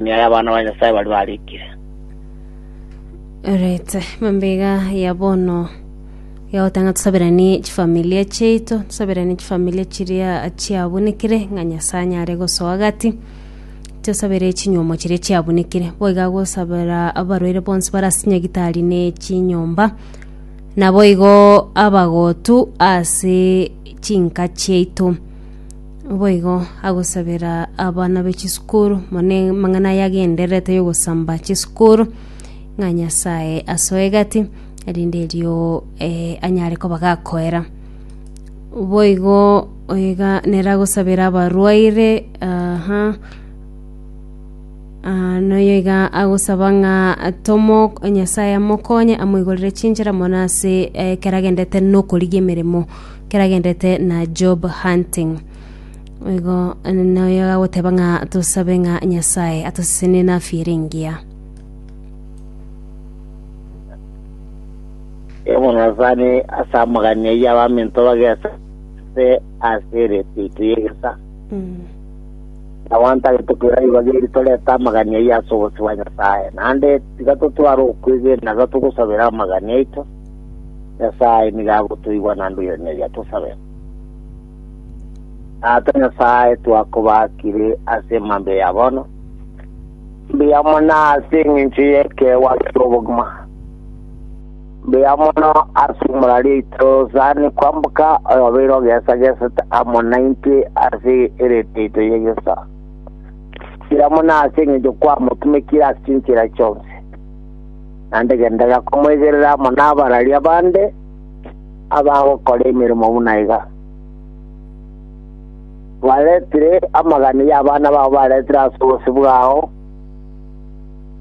Emioyo y'abana ba Nyasae baria barikire. Alright, mambega ya bono yagotanga tusaberanie chifamilia chiaito tusaberanie chifamilia chiria chiabunekire ng'a nyasaye anyare gosoa gati tusabere chinyuomo chiria chiabunekire boiga gosabera abarwaire bonsi barase nyagitari ne chinyomba naboigo abagotu ase chinka chiaito Naboigo agosabera abana be chisukuru mone mang'ana aya agendererete y'ogosamba chisukuru ng'a Nyasaye asoe egati erinde erio eh, anyare koba gakoera boigo oiga nera agosabera abarwaire aha Ah, noyo iga agosaba ng'a tomo nyasaye amokonye amoigorere chinchera mona ase eh, ekero agendete nokorigia emeremo keragenderete na job hunting igo noyo agoteba ng'a tosabe ng'a nyasaye atosesene nafire engiya Ebong'asani ase amagani ayio abaminto bagesa ase ase ereto yaito y'egesa. Abanto agete koira igo bageri torete amagani ayio ase obosio bwa Nyasae. Naende tiga totware okwegena iga togosabera amagani aito. Nyasae nigo agotoigwa na ndoiraneria tosabe. Tata Nyasae, twakobakire ase emambia ya bono, mbuya mono ase eng'encho y'ekeegwa ase obogima. Mbuya mono ase omorari oito sani kwamboka oyobeire ogesagesete amo naintwe ase erete yaito y'egesaa. Mbuya mono ase eng'encho kwamotumekire ase chinchera chionsi. naende gendega komoigerera amo nabararia bande abagokora emeremo buna iga. Baretire amagani y'abana bao baretire ase obosio bwao,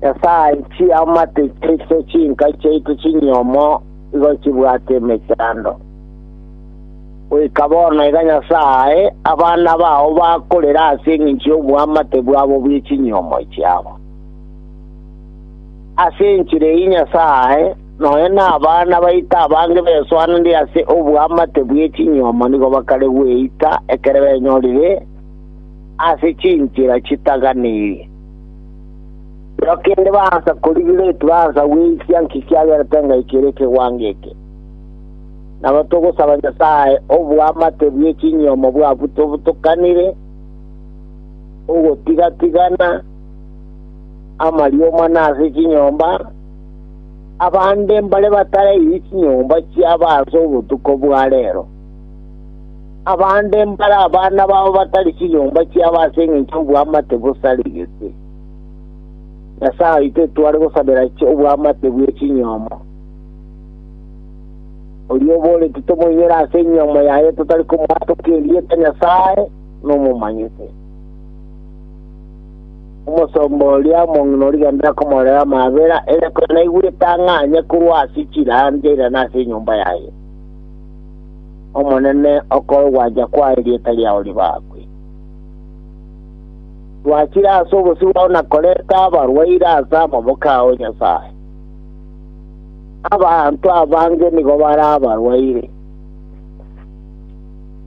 Nyasae chiamate chiaito chinka chiaito chinyomo igo chibwate emechando. Goika bono iga Nyasae, abana bao bakorera ase engencho y'oboamate bwabo bwe chinyomo chiabo. Ase enchera eyio Nyasae nonya nabana baito abange besoanire ase oboamate bwe chinyuomo nigo bakare gweita ekero benyorire ase chinchera chitaganirie. Nero kende baansa korigire tibaansa gweisia nki kiagerete engaikera ere ekegwango eke. Nabo togosaba Nyasae oboamate bwe chinyuomo bw'abwo tobotokanire, ogotiga-tigana, amarioma na ase chinyomba, abande mbare batarairie chinyomba chiabo ase obotuko bwa reero. Abande mbare abana babo batari chinyomba chiabo ase engencho y'obwamate bosarigete. Nyasae oito etware gosabera obwamate bwe chinyomo. Oria oboreti tomoinyore ase enyomo yaye totari komoa toke erieta Nyasae nomomanyete. Omosomba oria omong'ina o riganda akomorera amaabera, ere konya naigwete ang'anye korwa ase chirancha eira na ase enyomba yaye. Omonene, okore ogwancha kwao, erieta riao ribaakwe. Rwachire ase obosio bwao na koreta abarwaire ase amaboko ao, Nyasae. Abanto abange nigo bare abarwaire.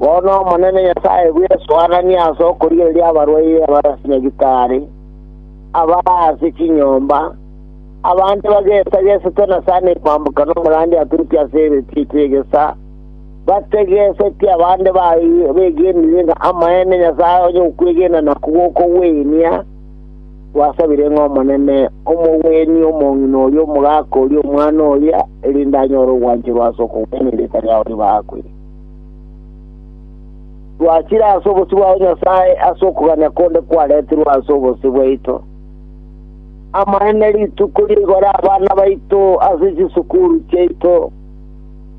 Bono Omonene Nyasae bw'esoananie ase okorigereria abarwaire abare ase nyagitari, abare ase chinyomba, abande bagesagesete na sani kwamboka n'omorandia aturute ase eretio etio egesa, bategesetie abande baye begenire ng'a amaene Nyasae onye okwegena nakwo gokogwenia, gwasabire ng'a Omonene omogwenie omong'ina oria omogaka oria omwana oria, erinde anyore ogwancherwa ase okogwenia erieta riao ribaakwe. Twachire ase obosio bwao Nyasae ase okogania konde kwaretirwe ase obosio bwaito. Amaene rituko rigore abana baito ase chisukuru chiaito,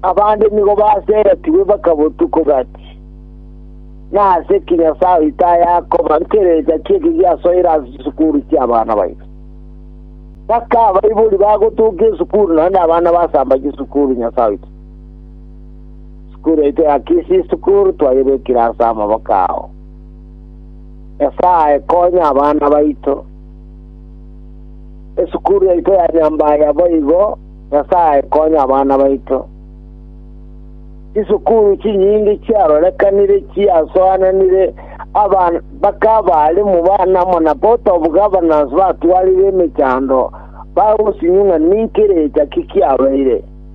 abande nigo baseretigwe bakabotuko gati. Nase ki Nyasae oito ayakoba nkerecha ki'eki giasoire ase chisukuru chi'abana baito? Baka abaibori bagotokia esukuru naende abana basamba chisukuru Nyasae oito. Sukuru yaito ya Kisii School twayebekire ase amaboko ao. Nyasae konya abana baito. Esukuru yaito ya Nyambaya boigo, Nyasae konya abana baito. Chisukuru chinyingi chiarorekanire chiasoananire aban baka abalimu bana mona Board of Governors batwarire emechando bagosinyung'a ninki erecha ki kiabeire.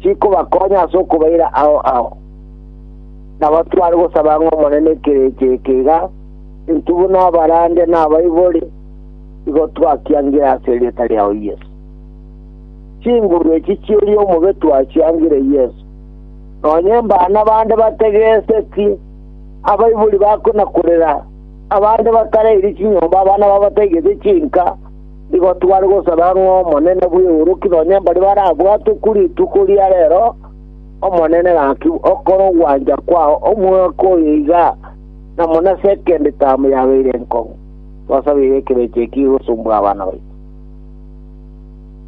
chikobakonya ase okobaira ao ao. Nabo tware gosaba ng'a Omonene ekerecha eke iga entubu na abarande na abaibori igo twakiangire ase erieta riao Yeso. Chinguru echi chieria omobe twachiangire Yeso. Nonye mbana bande bategeseti, abaibori bakona korera, abande bakareiri chinyomba, abana babo bataigete chinka, Nigo tware gosaba ng'a Omonene bw'eoroki nonye mbaria barabwatwe ku rituko ria rero. Omonene, gaki okore ogwancha kwao omwaka oyo iga, na buna second term yabeire enkong'u. Twasabeire ekerecha eki gosumbwa abana baito.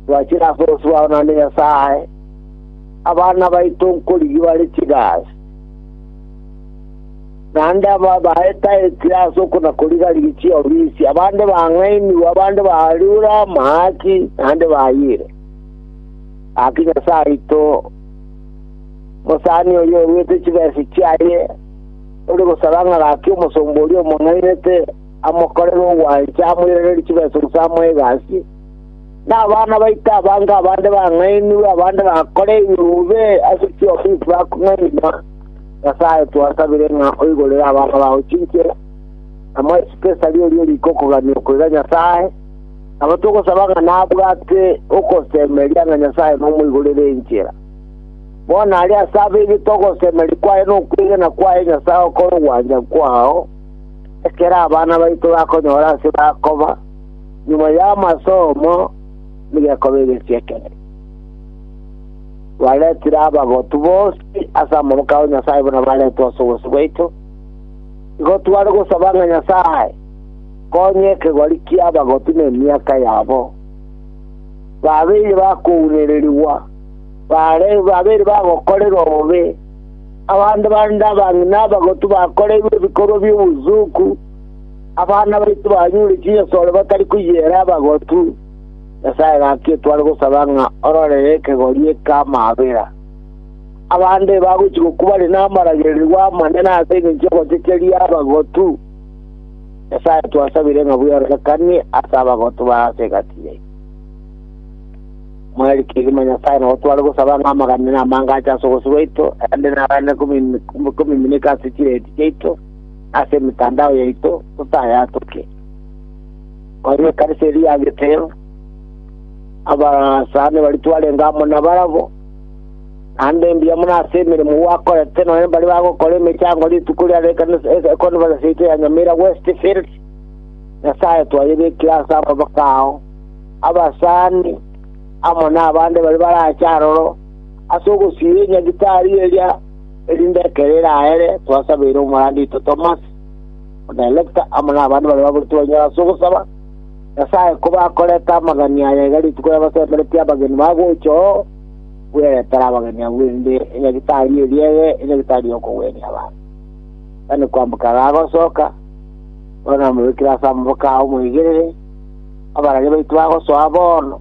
Twachire ase obosio bwao naende Nyasae, abana baito nkorigia bare chigasi. Naende aba baetaetie ase okona-koriga-rigia chiofisi, abande bang'ainigwe, abande bariure amaaki, naende bayire. Gaki Nyasae aito, omosani oria oruete chibesa chiaye, ore gosaba ng'a gaki omosomba oria omong'ainete amokorere ogwancha, amoiranerie chibesa gose amoe egasi, Nabana baito abange abande bang'ainigwe, abande bakoreirwe bobe ase chiofisi bakong'ainigwa. Nyasae, twasabire ng'a oigorere abana bao chinche, na moe Sipesari oria ori gokogania okoira Nyasae, nabo togosaba ng'a nabwate ogosemeria ng'a Nyasae nomoigorere enchera. Bono aria ase abaibe togosemeria kwaye na okwegena kwaye Nyasae okore ogwancha kwao, ekero abana baito bakonyora ase bakoba, Nyuma y'amasomo nigekoba egesia ekebe, baretire abagotu bonsi ase amaboko ao Nyasae buna baretwe ase obosio bwaito. Igo tware gosaba ng'a Nyasae konye ekegori ki'abagotu na emiaka yabo, babeire bakounererigwa, bare babeire bagokorerwa obobe, abande bande abang'ina abagotu bakoreirwe ebikorwa bi'obosuku, Abana baito banyure chinyasore batari koyiera abagotu, Nyasae gaki etware gosaba ng'a ororere ekegori eki'amabera. Abande bagochia gokubare namaragererigwa amane na ase engencho y'ogochecheria abagotu, Nyasae twasabire ng'a bweororekanie ase abagotu ba ase egati yaito. Mweri kegima Nyasae nabo tware gosaba ng'a amaganene amange ache ase ogosio gwaito, erinde naganererie komimineka ase chireeti chiaito, ase emetandao yaito totayatoke. Oria ekanisa eria ya Giteo, abasani baria twarenge amo nabarabwo, naende mbuya mono ase emeremo gwakorete nonye mbare bagokora emechango rituko ria ekanisa econference yaito ya Nyamira Westfield. Nyasaye twayebekire ase amaboko ao, abasani amo nabande baria barache aroro ase ogosiria enyagitari eria Erinde ekero eraere twasabeire omoranda oito Tomas, na Elekta, amo nabande baria baburetwe banyore ase ogosaba, Nyasae kobe akorete amagani aya iga rituko yabasemeretie abageni ba gocha oo bweretere abageni abwo erinde enyagitari eria ebe enyagitari y'okogwenia abanto. Gani kwamboka iga agosoka, bono namobekire ase amaboko ao omoigerere, abarage baito bagosoa bono.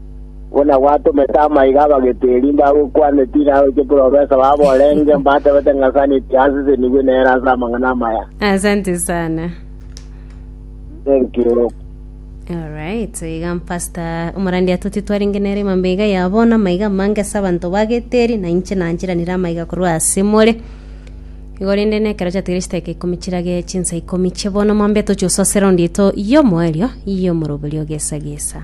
Buna gwatomete amaiga abageti erinde agokwane Tiro agochie Profesa wabo orenge, mbatebete ng'a Sani tiasesenigwe nere ase amang'ana amaya. Asante sana. Thank you. Alright, iga pastor omorandia toti twarenge nere mambe iga ya bono amaiga amange ase abanto bageteri na inche nanchiranire amaiga korwa ase more igo rende nekero chiatigire chiteke ikomi chirage chinsa ikomi chie bono mambe tochie gosasera onde ito yomoerio yomoroberio gesa gesa